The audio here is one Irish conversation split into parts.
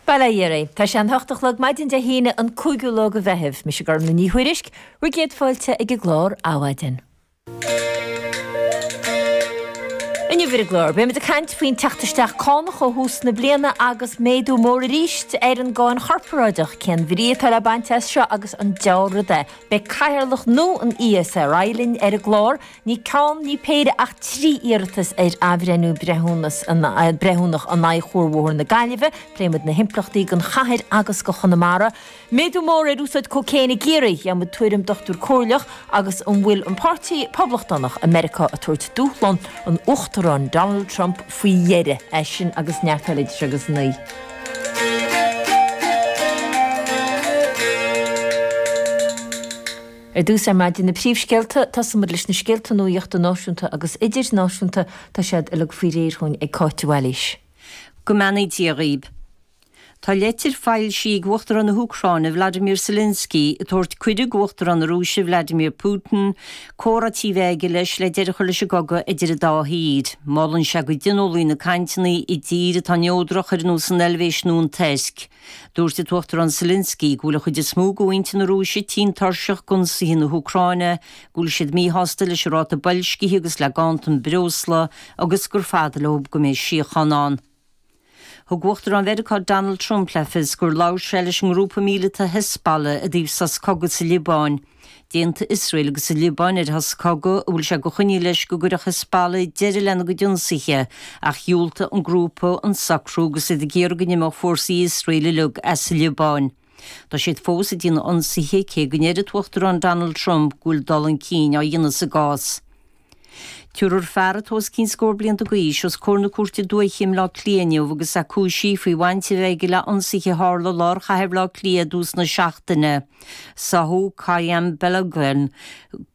Bail ó Dhia oraibh. Tá sé an t-ocht a chlog maidin Dé hAoine an cúigiú lá de Mheitheamh. Mise Gormfhlaith Ní Thuairisg. Bhur gcéad fáilte ag an gclár Adhmhaidin. Inniu ar an gclár, beimid ag caint faoin teacht isteach cánach ó thús na bliana agus méadú mór arís ar an gcáin chorparáideach. Cén bhrí atá le baint as seo agus an dea-rud é? Beidh Cathaoirleach nua an ESRI linn ar an gclár. Ní ceann, ní péire ach trí iarratas ar athbhreithniú breithiúnach in aghaidh chuarbhóthar na Gaillimhe. Pléifidh muid na himpleachtaí don chathair agus do Chonamara. Méadú mór ar úsáid cócaoin i gCiarraí, gheobhaidh muid tuairim dochtúir comhairleach, agus an bhfuil an páirtí Poblachtánach i Meiriceá ag tabhairt dúshlán an Uachtaráin Donald Trump faoi dheireadh? É sin agus neart eile idir seo agus a naoi. Ar dtús ar maidin na príomhscéalta, tosóidh muid leis na scéalta nuachta náisiúnta agus idirnáisiúnta, tá siad uilig faoi réir dhúinn ag Cáit de Bhailís. Go mbeannaí Dia dhaoib. Tá leitir foilsithe ag Uachtarán na hÚcráine Vladimir Zelensky ag tabhairt cuireadh do Uachtarán na Rúise Vladimir Putin comhráití a bheith aige leis le deireadh a chur leis an gcogadh idir an dá thír. Molann sé go dtionólfaí na cainteanna i dtír atá neodrach, ar nós an Eilvéis nó an Tuirc. Dúirt an tUachtarán Zelensky go bhfuil an chuid is mó de mhuintir na Rúise tinn tuirseach d'ionsaithe na hÚcráine, go bhfuil siad míshásta leis an ráta boilscithe agus le ganntan breosla agus gur fada leo go mbeidh síocháin ann. Thug Uachtarán Mheiriceá Donald Trump le fios gur labhair sé leis an ngrúpa míleata Hezbollah i dtaobh sos cogaidh sa Liobáin. D'aontaigh Iosrael agus an Liobáin ar shos cogaidh a bhfuil sé de choinníoll leis go gcuirfeadh Hezbollah deireadh lena gcuid ionsaithe, ach dhiúltaigh an grúpa an socrú agus iad ag iarraidh go n-imeodh fórsaí Iosrael uilig as an Liobáin. Tá siad fós ag déanamh ionsaithe, cé go ndeir an tUachtarán Donald Trump go bhfuil dul chun cinn á dhéanamh sa gcás. Tabharfar fear atá os cionn scór blianta d'aois os comhair na cúirte dúiche i mBleá Cliath inniu agus é cúisithe faoi bhaint a bheith aige le hionsaithe a tharla i lár chathair Bhleá Cliath i dtús na seachtaine. Sáthadh Qayyum Balogun,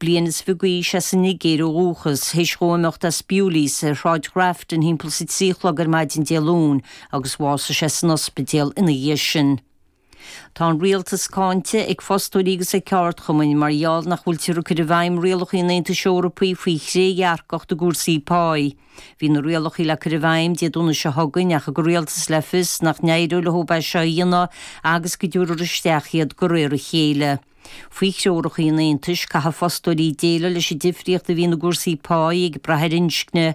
bliain is fiche d'aois as an Nigéir ó dhúchas, théis dhó imeacht as Bewleys ar Shráid Ghrafton thimpeall is a trí a chlog ar maidin Dé Luain agus bhásaigh sé san ospidéal ina dhiaidh sin. Tá an rialtas cáinte ag fostóirí agus ag ceardchumainn mar gheall nach bhfuiltear ag cur i bhfeidhm rialacha an Aontais Eorpaigh faoi thrédhearcacht i gcúrsaí páí. Bhí na rialacha le cur i bhfeidhm Dé Domhnaigh seo chugainn ach thug an rialtas le fios nach n-éireodh leo é seo a dhéanamh agus go dtabharfar isteach iad de réir a chéile. Faoi threoracha an Aontais, caithfidh fostóirí déileáil leis an difríocht a bhíonn i gcúrsaí páí ag brath ar inscne,